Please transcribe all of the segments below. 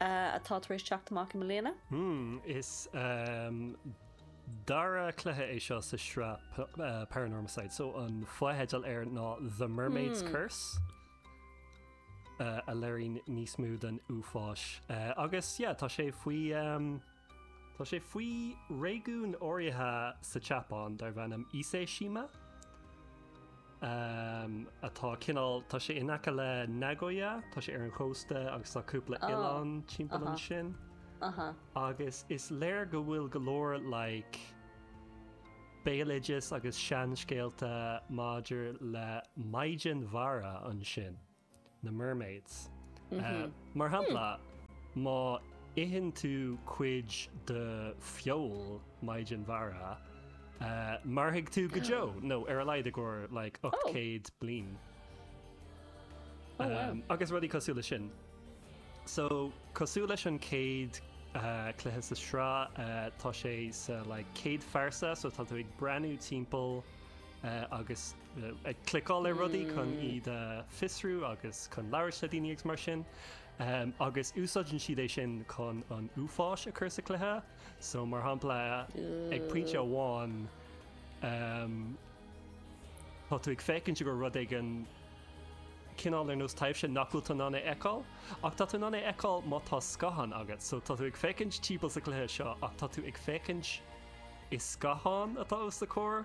atá tar éis teacht amach i mbliana. Mmm, is dara cluiche é seo sa sraith Paranormasight, so an fotheidil air ná The Mermaid's Curse, a léiríonn níos mó den uafáis agus yeah, tá sé faoi. Tá sé faoi réigiún áirithe sa tSeapáin darb ainm Ise-shima, atá cineál, tá sé in aice le Nagoya, tá sé ar an chósta agus tá cúpla oileán timpeall ansin. Agus is léir go bhfuil go leor like béaloideas agus seanscéalta maidir le Maighdean Mhara ansin. na mermaids. Mar shampla, má itheann tú cuid de feoil maighdean mhara, mairfidh tú go deo, nó ar a laghad i gcomhair like 800 bliain. Agus rudaí cosúil leis sin. So, cosúil leis an chéad cluiche sa sraith, tá sé sa like céad phearsa, so tá tú ag breathnú timpeall agus ag cliceáil ar rudaí chun iad a fiosrú agus chun labhairt le daoine agus mar sin. Agus úsáideann siad é sin chun an uafáis a chur sa chluiche, so mar shampla ag pointe amháin tá tú ag féachaint do rud éigin cineál ar nós taibhse nach bhfuil tú in ann é a fheiceáil ach tá tú in ann é a fheiceáil má tá scáthán agat. So tá tú ag féachaint timpeall sa chluiche seo ach tá tú ag féachaint i scáthán atá os do chomhair.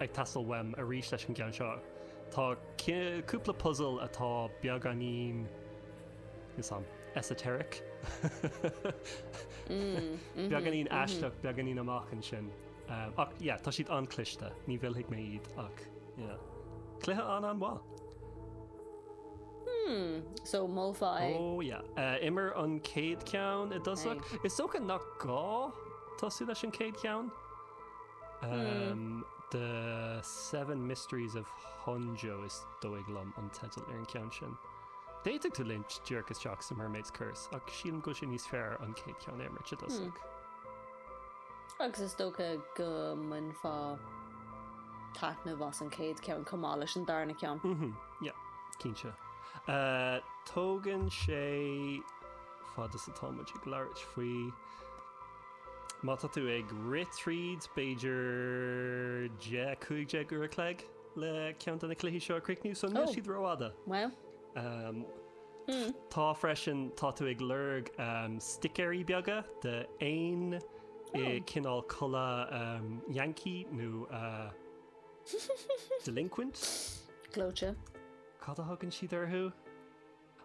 ag teastáil uaim arís leis an gceann seo. Tá cúpla puzail atá beagáinín, erm, esoteric, beagáinín aisteach, beagáinín amach ansin. Ach yeah, tá siad an-chliste, ní mhillfidh mé iad ach cluiche an-an-mhaith. So molfá é. Ó yeah. Imir an céad ceann i dtosach. Is dócha nach gá tosú leis an céad ceann. The Seven Mysteries of Honjo is dóigh liom an teideal ar an ceann sin. D'fhéadfadh tú léimt díreach isteach sa Mermaid's Curse ach sílim go bhfuil sé níos fearr an chéad ceann a imirt i dtosach. Agus is dócha go mbainfeá taitneamh as an chéad ceann chomh maith leis an darna ceann. Yeah, cinnte. Tógann sé, fad is atá muid ag labhairt faoi. Má tá tú ag rith tríd, b'fhéidir 10-15 uair a chloig le ceann de na cluichí seo a chríochnú, so níl siad rófhada. Bhuel. Tá freisin, tá tú ag lorg sticéirí beaga d'éin i gcineál culaith Yankee nó Delinquent. Gleoite. Cad a thugann siad orthu?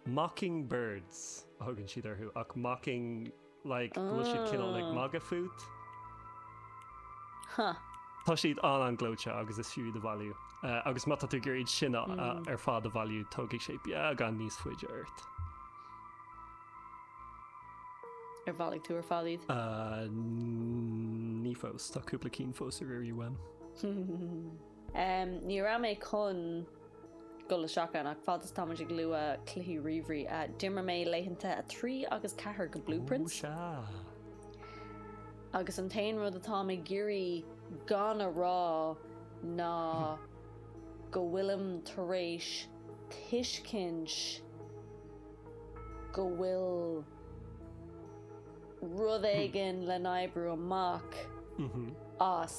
mocking birds a thugann siad orthu ach mocking like go bhfuil siad cineál ag magadh fút. Huh. Tá siad an-an gleoite agus is fiú iad a bhailiú. Agus má tá tú ag iarraidh iad sin ar fad a bhailiú tógfaidh sé beagán níos faide ort. Ar bhailigh tú ar fad iad? Ahh ní fós, tá cúpla ceann fós ar iarraidh uaim. Ní raibh mé chun dul isteach ann ach fad is táimid ag lua cluichí ríomhairí, d'imir mé laethanta 3 agus 4 de Blue Prince. Ooh sea! Agus an t-aon rud atáim ag iarraidh gan a rá ná go bhfuilim tar éis tuiscint go bhfuil rud éigin le n-oibriú amach as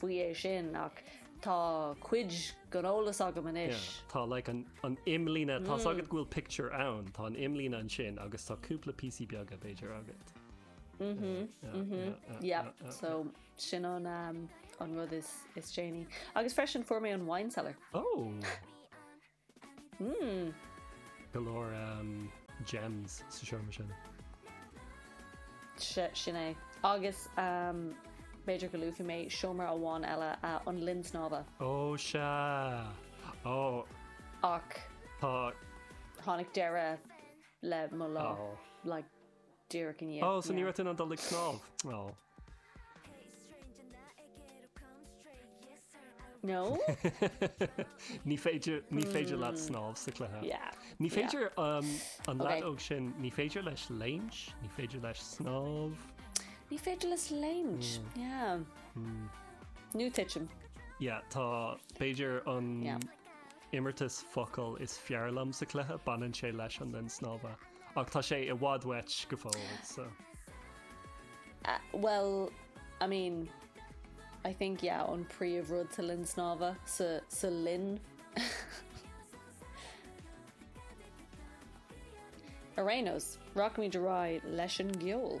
faoi é sin ach tá cuid den eolas agam anois. Yeah, tá like an, an imlíne, mm. tá's agat go bhfuil pictiúr ann, tá an imlíne ansin agus tá cúpla písí beaga b'fhéidir agat. Mhm, mhm, yeah, so sin an, um, an rud is, is déanaí. Agus freisin fuair mé an wine cellar. Oh! Mmm. go leor gems sa seomra sin. Sin é. Agus b'fhéidir go luafaidh mé seomra amháin eile, an linn snámha. Ó sea! Ó! Ach. Tá. Tháinig deireadh le mo lá. Ó. Like. díreach inné. Ó, so ní raibh tú in ann dul ag snámh? Ó. No. Ní féidir, ní féidir leat snámh sa cluiche. Yeah. Ní féidir um, an leaid óg sin, ní féidir leis léim, ní féidir leis snámh. Ní féidir leis léim. Hmm. Yeah. Hmm. Nó titim. Yeah, tá b'fhéidir an... Yeah. Imeartas focal is fearr liom sa cluiche, baineann sé leis an linn snámha, ach tá sé i bhfad uait go fóill, so. Uh, well, I mean, I think, yeah, an príomhrud sa linn snámha, sa, sa linn. Ar aon nós, rachaimid ar aghaidh leis an gceol.